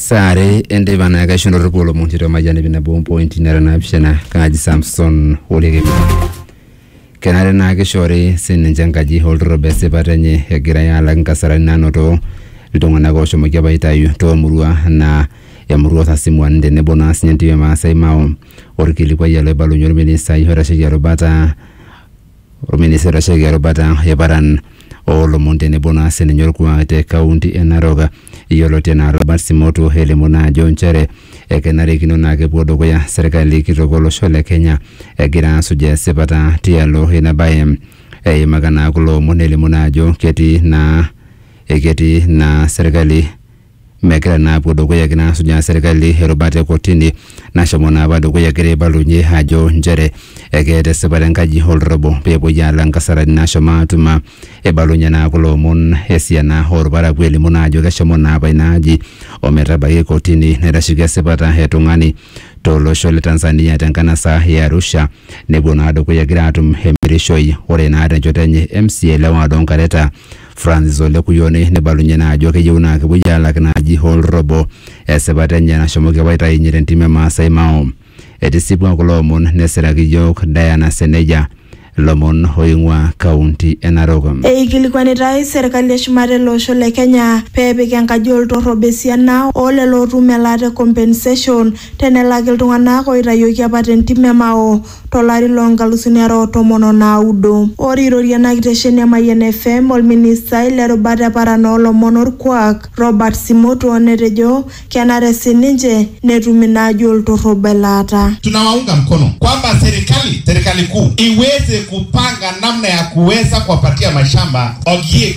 saa are enteipa naa kaisho ndorropu olomon tiatua mayian ip nabo ompointi nara naapishana kaaji samson olekemi kenare naa kishoori sininche enkaji olturrob esipata enye egirai alak inkasarani naanoto iltung'anak oshomoki apa aitayu toomurua naa emurua osasimuan tenebo naa sinye entim e Maasai Mao orkilikuai ele oibalunye orministai oitasheki erubata Olministai oitasheki erubata e paran oo lomon tenebo naa sininye olkuak te kaunti e Narok yioloti anaa Robert Simotuo elimu naa ajo nchere ekenarikino naa kepuo dukuya serkali kitok o losho le Kenya egira aasuj esipata tialo ina bae. Eimaka naa kulo omon elimu naa ajo ketii naa ketii naa serkali megira naa apuo dukuya egira naa asujaa serkali erubata e kotini nashomo naa apa dukuya egira aibalunye ajo nchere ekeeta esipata enkaji oltorobo peepuoi aala nkasarani naashomo aatuma eibalunye naa kulo omon esiana olparakuo elimu naa ajo keshomo naa apa ina aji ometabai kotini naitasheki esipata e tung'ani tolosho le Tanzania tenkanasa e Arusha nepuo naa dukuya egira aatum emirishoi ore naa tenchoto enye MCA le ward oo Nkareta Francis Ole Kuyone neibalunye naa ajo keyieu naa kepuoi aalak ina aji hoo olrobo esipata enye nashomoki apa aitayunye te ntim e Maasai Mao. Etisipua kulo omon nesiraki iyiook Diana Seneja lomon oing'ua kaunti e Narok. Eikilikuanitai serkali eshumata ele osho le Kenya pee epik enkaji oo ltorrob esiana oo lelo ootum elaata e compensation tenelaki iltung'anak ooitayioki apa te ntim e Mao. to lari loo nkalusuni are o tomon o naudo. Ore eirorie ena kitesheni e Mayian FM olministai le rubata e paran oo lomon o lkuak Robert Simotuo netejo kenare sii ninche netum ina aji o lturrub elaata. Tunawaunga mkono kwamba serikali serikali kuu iweze kupanga namna ya kuweza kuwapatia mashamba ogiek.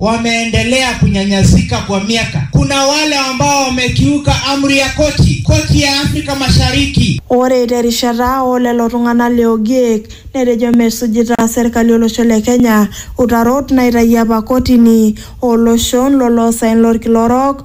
wameendelea kunyanyasika kwa miaka. Kuna wale ambao wamekiuka amri ya koti, koti ya Afrika Mashariki. Ore terishata oo lelo tung'ana le Ogiek netejo mesujita serkali olosho le Kenya utarot naitayio apa kotini oo loshon lo loosaen lolkila orok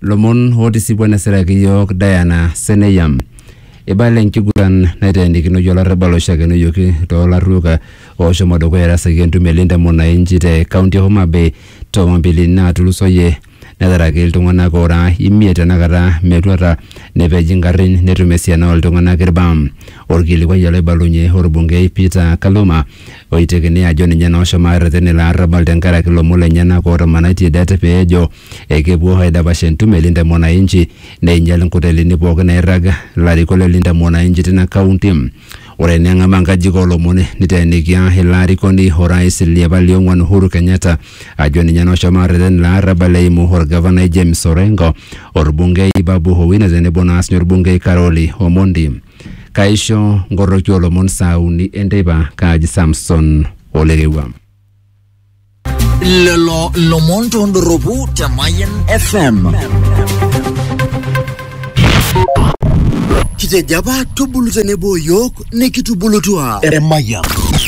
lomon otisipua nesiraki yiok Diana Seneyam. Ibala enkiguran naiteenikinoyie olarrabal oishakenoyioki toolarruok ooshomo dukuya erasaki entumo e Linda Mwananchi te kaunti e Homa Bay toowambili naatulusoyie netaraki iltung'anak oora imiet tenakata metuata nepej ingarrin netum esiana ooltung'anak ilbaa. Olkilikuai oloibalunye olbungei Peter Kaluma oitekini ajo ninye naa oshomo arreten ilo arrabal tenkaraki ilomon lenyenak ootomanaitie det pee ejo ekepuo aidapash entumo e Linda Mwananchi neinyal inkotelini pooki nairrag ilarikok le Linda Mwananchi tina kaunti. Ore eneng'amaa nkajijik oo lomon niteenikia ilo arikoni o rais li apa li ong'wan Uhuru Kenyatta ajo ninye naa oshomo arreten ilo arrabal eimu olgavanai James Orengo, olbungei Babu Owino tenebo naa siinye olbungei Karoli Omondi. kaisho ngoroki olomon saa uni enteipa kaaji samson olerewua lelo lomon tondoropu te Mayan FM. Kitejo apa tubulu tenebo yiok nikitubulutua Emayian.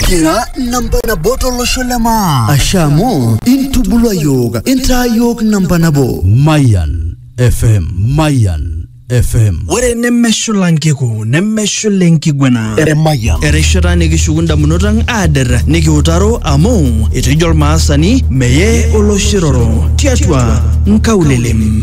Kira namba nabo tolosho le maa. Ashe amu intubulua yiok intaa yiok namba nabo. Mayan FM. Mayan FM. ore nemeshula nkiku nemeshula enkiguena Emayian. erishata nikishuku ndamunot ang aader nikiutaro amu etejo olmaasani meye oloshiroro tiatua nkaulelem